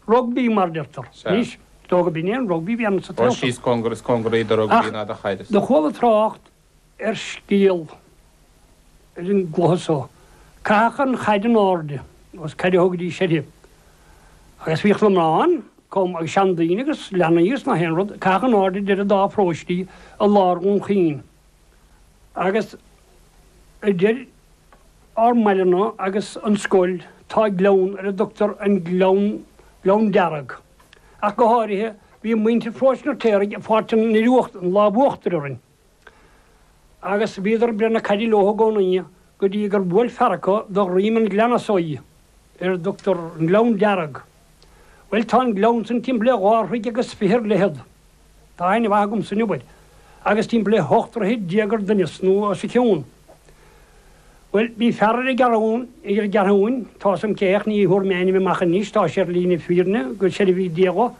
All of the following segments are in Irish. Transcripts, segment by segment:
rugbaí mar a deirtear anois, is dóigh go b'in é an rugbaí a bhí ann sa Ghaeltacht. Ach is cóngar is cóngaraí do rugbaí ná do chaid. Do chuala trácht ar scéal ar an gcluiche so. Caitheadh an chaid in airde agus caid a thugaidís uirthi. Agus bhíodh na mná ann comh, agus seandaoine agus leanaí agus nach aon rud, caitheadh in airde idir an dá pharóiste i lár Dhún Chaoin. agus idir ár mbaileanna agus an scoil tá gleann ar a dtugtar an Gleann Gleann Dearg. Ach go háirithe, bhí muintir Pharóiste an Fheirtéaraigh ag fáilt an fhir uachtair, an lámh uachtair orainn, agus bhíodar ag breith na caide leo i gcónaí go dtí gur bhuail fear acu do dhroim an ghleanna so í, ar a dtugtar an Gleann Dearg. Bhuel, tá an gleann san timpeall le dhá throigh agus fiche ar leithead. Tá aithne mhaith agamsa air, abair, agus timpeall 18 troithe ar doimhneas nó os a chionn. Bhuel, bhí fear ar an gCeathrún, ar an gCeathrúin, tá's agam cé hé ach ní thabharfaidh mé a ainm amach anois, tá sé ar shlí na fírinne, go soirbhí Dia dho,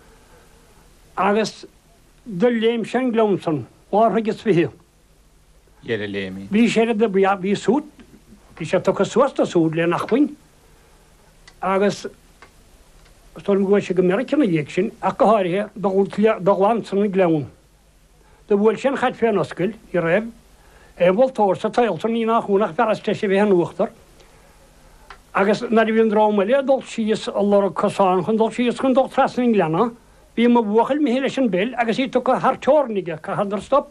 agus do léim sé an gleann san, dhá throigh 's fiche. dheireadh léi. Bhí sé ar a bhí bhí súd bhí sé tugtha suas dó súd le n-acmhainn agus is dóigh liom gur chuaigh sé go Meiriceá ina dhiaidh sin ach go háirithe do do ghlan san an gleann. Do bhuail sé an chaid féna oscaill ní raibh aon mholtóir sa tsaol san ní nach ionadh ach an fear is treise a bheith in uachtar agus nuair a bhí an dream eile ag dul síos ag lorg cosán chun dul síos chun dul trasna an ghleanna bhí mo bhuachaill imithe leis an bpeil agus í tugtha thar teorainn aige chaitheadar stop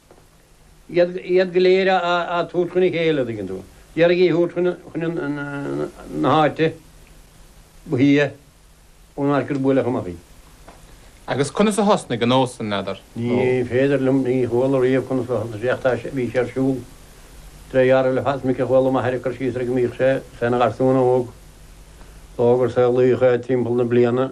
iad go léir a thabhairt chun a chéile, a dtuigeann tú, d'iarraidh í a thabhairt chun na háite ba shia ón áit gur buaileadh amach í. Agus conas a thosnaigh an nós sin, n'fheadar? Ní féidir liom, ní chuala riamh conas a thosaigh sé ach tá sé, bhí sé ar siúl, de réir dealraimh le fada, is minic a chuala m'athair ag cur síos air go mbíodh sé ina gharsún óg, is dócha gur saolaíodh é timpeall na bliana.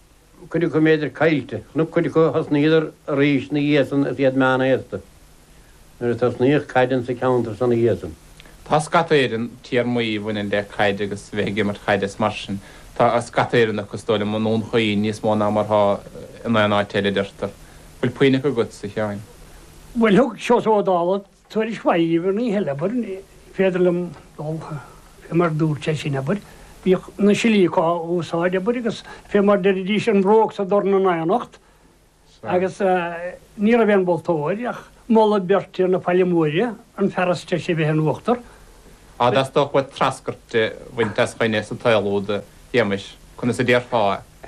cuid acu b'fhéidir caillte, nó cuid acu, thosnaíodar arís 'na dhiaidh san is iad meánaosta nuair a tosnaíodh caid ann sa cheantar san 'na dhiaidh san. Tá scata Éireann, téarmaí a bhaineann le caid agus bheith ag imirt caide is mar sin, tá scata Éireann acu, is dóigh liom, i nDún Chaoin níos mó ná mar atá in aon áit eile, adeirtear. Bhfuil puinn acu agat, a Sheáin? Bhuel, thug Seosamh Ó Dálaigh. Tuairisc mhaith an oíche eile, abair. Ní féidir liom dul, fé mar a dúirt sé sin, abair. Bhíodh na silíoca á úsáid, abair, agus fé mar deiridís an bhróg 's an dorn in aonacht. Agus ní raibh aon mholtóir ach moladh beirte na Faille Móire, an fear is treise a bheith in uachtar. Á, dá dteastódh uait treascairt a bhaint as dhuine sa tsaol úd, Shéamais, conas a déarfá é?